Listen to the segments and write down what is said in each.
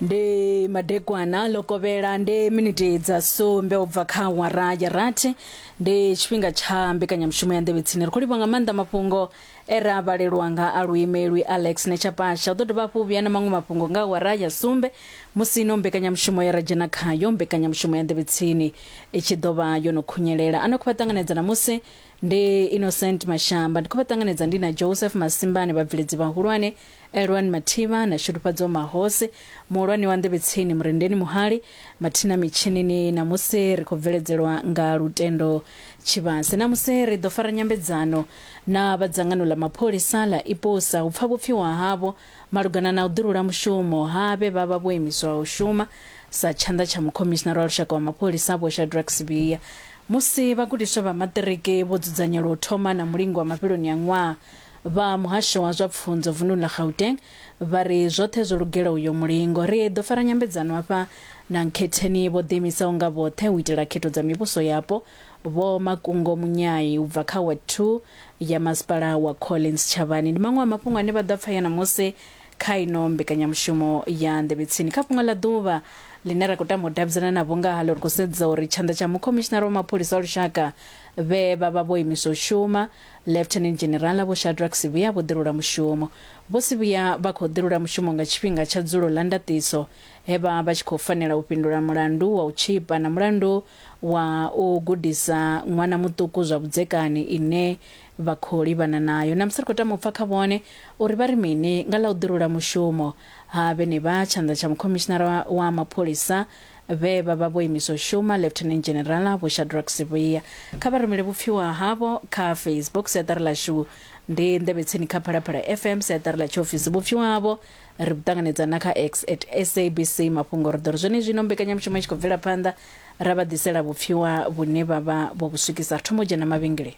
ndi madekwana ḽo kovhela ndi miniti dza sumbe u bva kha awara ya rathi ndi tshifhinga tsha mbekanyamushumo ya nḓevhe tsini ri khou livha nga maanḓa mafhungo e ra vhalelwa nga a luimelwi alex nechapasha u ḓo dovha hafhu vhuya na maṅwe mafhungo nga awara ya sumbe musi ino mbekanyamushumo ye ra dzhena khayo mbekanyamushumo ya nḓevhe tsini i tshi ḓo vha yo no khunyelela a no khou vha ṱanganedza namusi ndi innocent mashamba ndi khou vha ṱanganedza ndi na joseph masimbani vhabveledzi vhahulwane Elwani Mathiba na Shudufhadzo Mahose, muhulwane wa nḓevhetsini Murendeni Muhali, mathina mitshinini Namusi ri khou bveledzelwa nga Lutendo Tshivhase. Namusi ri ḓo fara nyambedzano na vha dzangano ḽa mapholisa ḽa IPOSA u pfa vhupfiwa havho malugana na u ḓirula mushumo ha vhe vha vha vho imiswa u shuma sa tshanḓa tsha mukhomishinara wa lushaka wa mapholisa Vho Shadrack Sibiya musi vhagudiswa vha maṱiriki vho dzudzanyelwa u thoma na mulingo wa mafheloni a ṅwaha Vha muhasho wa zwa pfunzo vunḓuni ḽa Gauteng vha ri zwoṱhe zwo lugela uyo mulingo. Ri ḓo fara nyambedzano hafha na Nkhetheni vho ḓiimisaho nga vhoṱhe u itela khetho dza mivhuso yapo, Vho Makungo Munyai u bva kha Ward Two ya Masipala wa Collins Tshavhani. Ndi maṅwe a mafhungo ane vha ḓo a pfaya ṋamusi kha ino mbekanyamushumo ya Nḓevhe Tsini. Kha Fhungo ḽa Ḓuvha ḽine ra khou tama u davhidzana navho nga haḽo, ri khou sedza uri tshanḓa tsha Mukhomishinara wa Mapholisa a Lushaka vhe vha vha vho imiswa u shuma, Lieutenant General Vho Shadrack Sivhuya vho ḓilula mushumo. Vho Sivhuya vha khou ḓilula mushumo nga tshifhinga tsha dzulo ḽa ndaṱiso he vha vha tshi khou fanela u fhindula mulandu wa u tshipa na mulandu wa u gudisa ṅwana muṱuku zwa vhudzekani ine vha khou livhana nayo. Ṋamusi ri khou tama u pfa kha vhone uri vha ri mini nga ḽa u ḓilula mushumo ha vhenevha. Tshanḓa tsha Mukhomishinara wa Mapholisa Vhe vha vha vho imiswa u shuma, Lieutenant General Vho Shadrack Sivhuya, kha vha rumele vhupfiwa havho kha Facebook, Siaṱari ḽashu ndi Nḓevhe Tsini kha Phalaphala FM, Siaṱari ḽa Tshiofisi. Vhupfiwa havho ri vhu ṱanganedza na kha X at SABC Mafhungo. Ri ḓo ri zwenezwino mbekanyamushumo i tshi khou bvela phanḓa, ra vha ḓisela vhupfiwa vhune vha vha vho vhu swikisa. Ri thoma u dzhena mavhengeleni.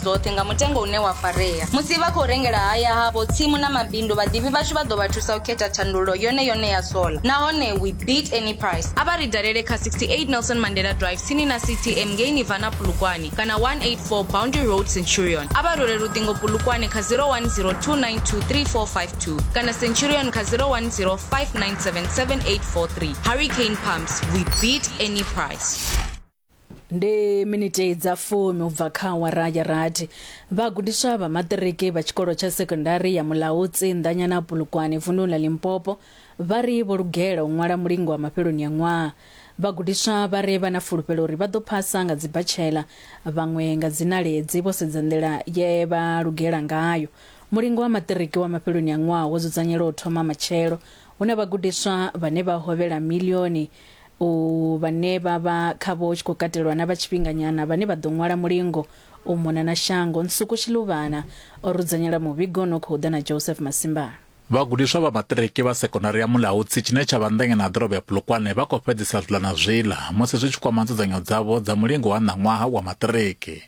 dzoṱhe nga mutengo une wa farea. Musi vha khou rengela haya havho, tsimu na mabindu, vhaḓivhi vhashu vha ḓo vha thusa u khetha thandululo yone yone ya sola. Nahone we beat any price. A vha ri dalele kha 68 Nelson Mandela Drive tsini na CTM ngei Nirvana Polokwane kana 184 Boundary Road Centurion. A vha rule luṱingo Polokwane kha 0102923452 kana Centurion kha 0105977843. Hurricane Pumps, we beat any price. ndi miniti dza fumi u bva kha awara ya rathi vhagudiswa vha maṱiriki vha tshikolo tsha sekondari ya mulautsi nḓanyana pulukwane vunḓuni ḽa limpopo vha ri vho lugela u ṅwala mulingo wa mafheloni a ṅwaha vhagudiswa vha ri vha na fulufhelo uri vha ḓo phasa nga dzibhatshela vhaṅwe nga dzinaledzi vho sedza nḓila ye vha lugela ngayo mulingo wa maṱiriki wa mafheloni a ṅwaha wo dzudzanyelwa u thoma matshelo hu na vhagudiswa vhane vha hovhela milioni u vhane vha vha khavho hu tshi khou katelwa na vha tshifhinganyana vhane vha ḓo ṅwala mulingo u mona na shango. Nsuku Shiluvhana o ri dzudzanyela muvhigo une u khou ḓa na Joseph Masimbana. Vhagudiswa vha maṱiriki vha sekondari ya Mulaudzi tshine tsha vha nḓengeni ha ḓorobo ya Polokwane vha khou fhedzisa zwiḽa na zwiḽa musi zwi tshi kwama nzudzanyo dzavho dza mulingo wa ṋaṅwaha wa maṱiriki.